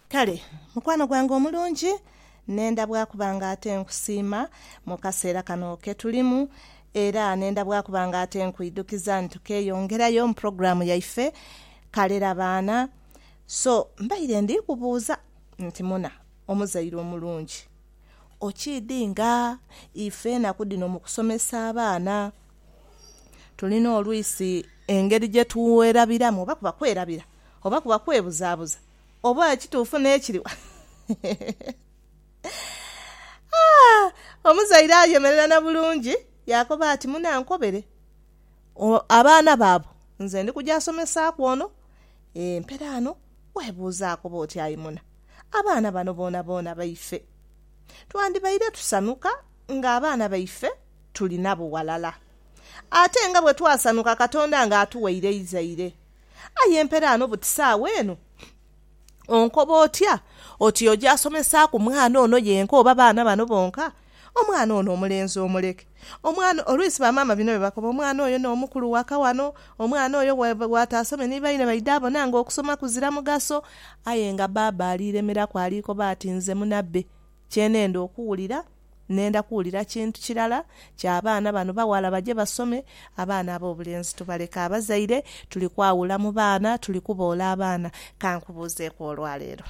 Kale mukwano gwange omulungi, nenda bwa kuba nga ate nkusiima mu kaseera kano ke tulimu, era nenda bwa kuba nga ate nkwidhukiza nti tukeeyongerayo mu pulogulaamu yaife Kalera Baana. So, mbaire ndi kubuuza nti muna, omuzaire omulungi, okiidhi nga ife enaku dhino mu kusomesa abaana Tulina olwisi engeri gye twerabiramu, oba kuba kwerabira, oba kuba kwebuzaabuza, oba ekituufu n'ekiri wala. Omuzaire ayemerera na bulungi yaakoba ati, Munankobere abaana bo abo, nze ndi kuja somesaaku ono empera ano. Weebuuze akoba oti, Ayi muna, abaana bano boonaboona baife. Twandibaire tusanhuka ng'abaana baife tuli nabo ghalala. Ate nga bwe twasanuka Katonda nga atuwaire eizaire. Aye empera ano buti saagho eno. Onkoba otya oti oja asomesaaku mwana ono yenka oba baana bano bonka? Omwana ono omulenzi omuleke. Omwana, oluisi ba maama bino bye bakoba, omwana oyo no mukulu waka wano, omwana oyo bwataasome ni baine baidha bona nga okusoma kuzira mugaso. Aye nga baaba aliiremeraku alikoba ati nze munabbe, kye nenda okuwulira. Nenda kuwulira kintu kirala kya baana bano baghala baje basome, abaana ab'obulenzi tubaleke abazaire, tuli kwawula mu baana, tuli kuboola abaana. Ka nkubuuzeeku olwaleero.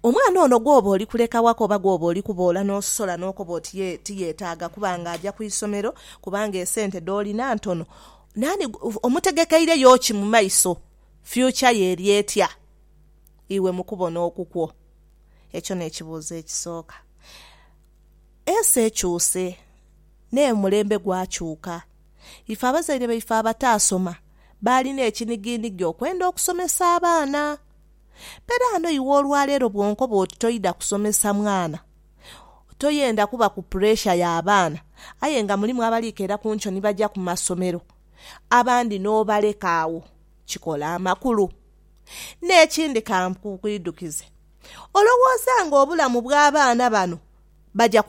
Omwana ono gw'oba oli kuleka waka oba gw'oba oli kuboola n'osola n'okoba oti ye tiyetaaga kuba ng'aja ku isomero kubanga esente dh'olina ntono, naani omutegekeireyo ki mu maiso? Future ye eri etya iwe mu kubona okukwo? Ekyo n'ekibuuzo ekisooka. Ensi ekyuse, n'omulembe gwakyuka. Ife abazaire baife abataasoma baalina ekinigiinigi okwenda okusomesa abaana. Mberaano iwe olwaleero bw'onkoba oti toidha kusomesa mwana, toyenda kuba ku puresha ya baana aye nga mulimu abali keera ku nkyo ni baja ku masomero, abandi n'obaleka agho, kikola amakulu. N'ekindi ka nkuidhukize, olowooza ng'obulamu bw'abaana bano baja